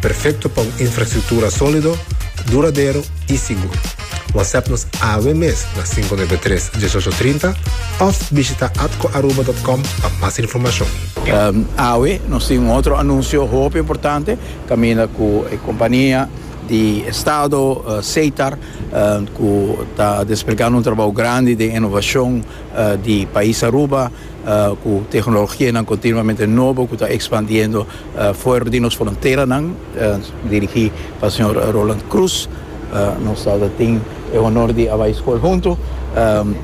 Perfecto pa un infrastructura solido, duradero y sigur. WhatsApp nos awe mes na cinco nuebe tres, dieshocho trinta of bishita atcoaruba.com pa mas informacion. Awe nos tin un otro anuncio hopi importante caminda cu e compania di estado Setar cu ta desplegando un trabajo grandi di innovacion di pais Aruba. cu tehnologianan continuamente nobo cu ta expandiendo fuer di nos fronteranan, dirigi pa señor Roland Croes. Nos ta tin e honor di a bay school hunto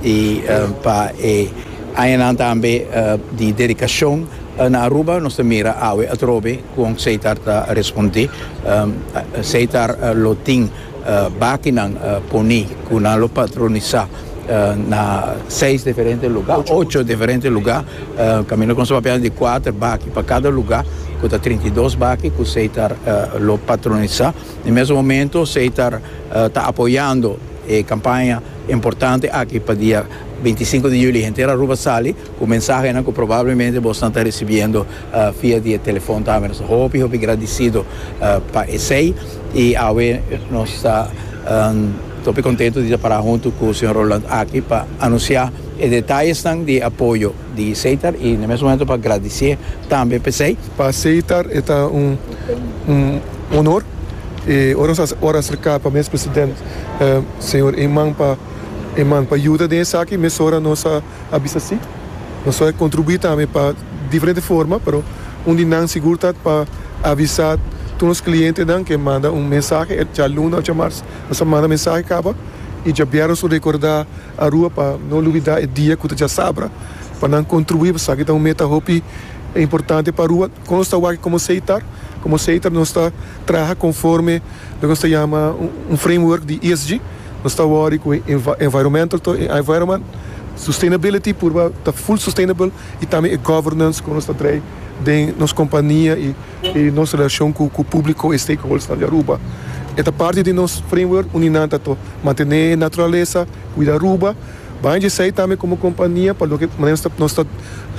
y pa e añanan tambe di dedicacion na Aruba nos ta mira awe atrobe con Seitar ta responde. Seitar lo tin. Bakinan poni ku nan lo patronisá na seis diferente lugá, ocho diferente lugá, kaminda ku nos ta papia di kuater baki pa kada lugá ku ta trinta i dos baki ku esei ta lo patronisá. Na e mesun momentu esei ta ta apoyando e kampaña importante aki pa dia binti i sinku di julio henter Aruba sali. Ku mensahenan ku probablemente bosnan ta risibiendo via di e telefòn tambe. Nos ta hopi, hopi gradisido pa esei. I awe nos ta hopi kontentu di ta pará huntu ku señor Roland aki pa anunsiá e detayesnan di e apoyo di Seitar i na mes momento pa gradisié tambe pa esei. Pa Seitar e ta un honor. I ora nos a ora aserká pa mes president señor Eman pa Eman pa yuda den esaki mesora nos a. a bisa si. Nos lo a kontribuí tambe pa diferente forma, pero un di nan sigur ta pa avisá tur nos klientenan ku e manda un mensahe e djaluna òf djamars. Nos a manda mensahe kaba i djabièrnè nos lo rekordá Arua pa no lubidá e dia ku ta dja sabra pa nan kontribuí, pasobra esaki ta un meta hopi importante pa Arua. Kon nos ta wak komo Seitar? Komo Seitar nos ta traha konforme loke nos ta yama un framework di ESG. Nos ta worry cu e environmental to e environment sustainability purba ta full sustainable y tambe e governance cu nos ta trae den nos compania y y nos relacion cu cu publico y stakeholders nan di Aruba. E ta parti di nos framework uni nan ta to mantene naturalesa, cuida Aruba, baña dje esey tambe como compania pa loke manera nos ta nos ta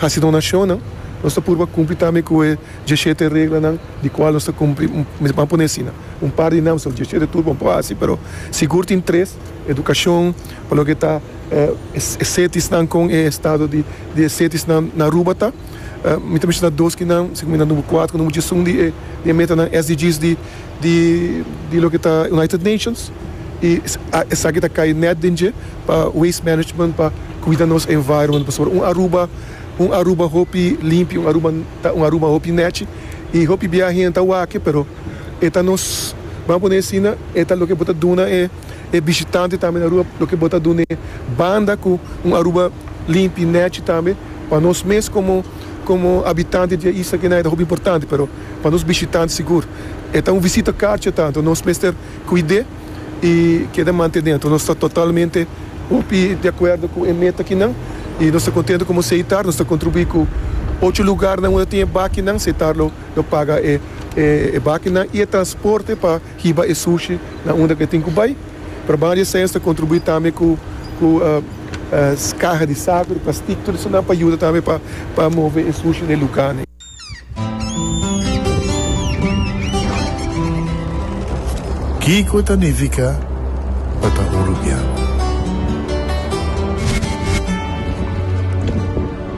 haci donacionnan nos ta purba cumpli tambe cu e dje shete reglanan di cual nos ta cumpli, mi ta pone asina. un par di nam so dje shete tur bo por hasi pero sigur tin tres, edukashon pa loke ta e setisnan kon e estado di di e setisnan na Aruba ta, mi ta menshona dos ki nan si ku mi ta number kuater ku nan muchu esun di e metanan SDGs di di di loke ta United Nations i esaki ta kai nèt den dje pa waste management pa kuida nos environment pasobra un Aruba un Aruba hopi limpi un Aruba ta un Aruba hopi nèchi i hopi bia hende ta wak e pero. e ta nos, ban pone asina, e ta loke bo ta duna e e bishitante tambe na Aruba, loke bo ta dun'e banda ku un Aruba limpi, nechi tambe. Pa nos mes komo komo habitante di e isla kenai ta hopi importante, pero pa nos bishitante sigur e ta un visita karchi tantu. Nos mester kuid'é i keda mantené. Anto nos ta totalmente hopi di akuerdo ku e meta kinan i nos ta kontentu komo Seitar nos ta kontribuí ku ocho lugarnan unda tin e bakinan. Seitar lo. Lo paga e bakinan y e transporte pa hiba e sushi na unda cu e tin cu bay. Pero banda di esey nos ta contribui tambe cu caha di saco, di plastic, tur esonan pa yuda tambe pa move e sushi na e luganan. Kico ta nifica pa ta uruguiano?